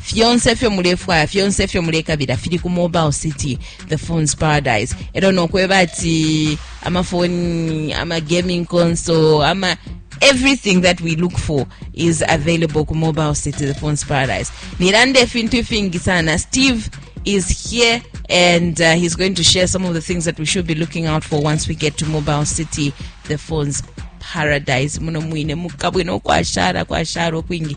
fyonse ifyo mulefwaya fyonse ifyo mulekabila fili ku mobile city the phones paradise elo nokweba ati amafoni amagaming console ama everything that we look for is available ku mobile city the phones paradise nilanda ifintu ifingi sana steve is here and uh, he's going to share some of the things that we should be looking out for once we get to mobile city the phones paradise muno mwine mukabwino kwashara kwashara okwingi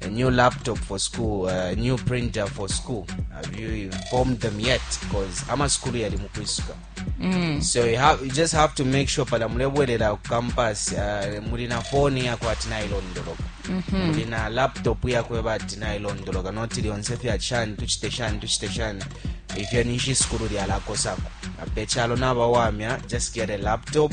a new laptop for school a new printer for school have you informed them yet because amasukulu yali mu kwisuka Mm. so you, have, you just have to make sure pala mulebwerera ku campus uh, mulina foni yako ati nailondoloka Mhm. mulina laptop yako eba ati nailondoloka noti lyonse fya shani tuchite shani tuchite shani ifyo ninshi isukulu lyalakosako ape chalo nabawamya just get a laptop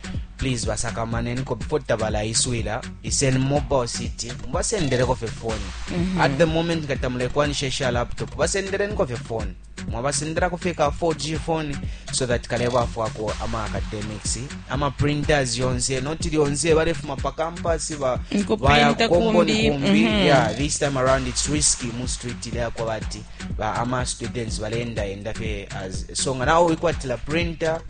please basakamaneniko before tabalaiswila iseni mobile city mubasendeleko fye foni at the moment nga tamulekwanisha isha laptop basendeleniko fye foni mwabasendelako fye ka 4g foni so that kalebafwako ama academics ama printers yonse noti lyonse balefuma pa campus ba- Nko baya printa kukombo ni kumbi, kumbi mhm. yeah this time around it's risky mu street ile yakwa bati ba ama students balenda enda fye as so nga nawe wikwatila printer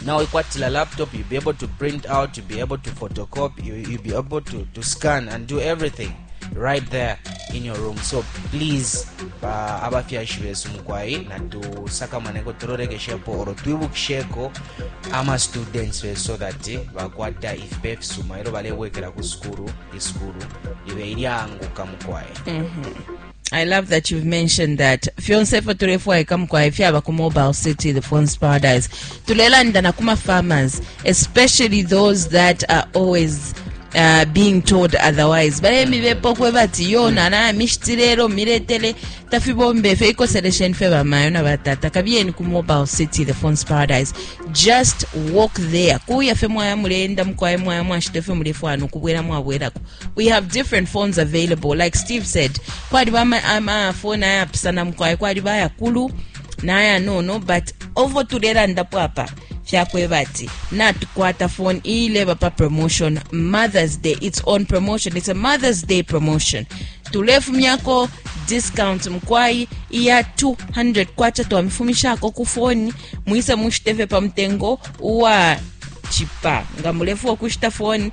now you got a laptop you'll be able to print out you'll be able to photocopy you, you'll be able to, to scan and do everything right there in your room so please ba abafyashi besu mukwai natusakamane tulorekeshepo oro twibukisheko ama students besu so that bakwata ifipe ifisuma ero balebwekera ku sukulu isukulu ibe ilyanguka mukwai mm -hmm. I love that you've mentioned that fyonse ifyo tulefwaika mukwai fyaba ku mobile city the phones paradise tulelanda na kuma farmers especially those that are always uh, being told otherwise balemibepa okweba ati yo nana mishitile miletele tafibomba efyo ikoselesheni fye bamayo na batata kabiyeni ku mobile city the phones paradise just walk there kuya fye mwaya muleenda mukwaye mwaya mwashita efyo mulefwana okubwela mwabwelako we have different phones available like steve said kwaliba amafoni ama ayapisana mukwai kwaliba ayakulu nayanono but ovo tulelandapo apa fyakweba ati natukwata phone iileba pa promotion mother's day its on promotion its a mother's day promotion tulefumyako discount mukwai iya 200 kwacha twamifumishako ku foni mwise mushiteve pa mutengo uwa chipa nga mulefua kushita foni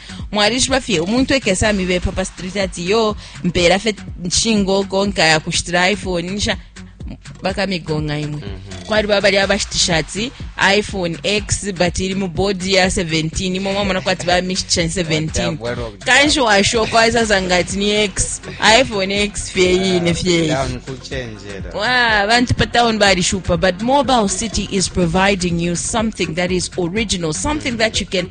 mwalishiba fye umuntu ekesa mibepa pa street ati yo mpera fye nshingo konka ya kushitira iphone nisha bakamigonga imwe mm -hmm. kwali babali abashitisha ati iphone x but iri mu bodi ya 17 imwe mwamona kwati bamishitisha 17 kanshi washoka waisasanga ati ni x iphone x fye yine fye iyi Wow, bantu pa town balishupa but mobile city is providing you something that is original something that you can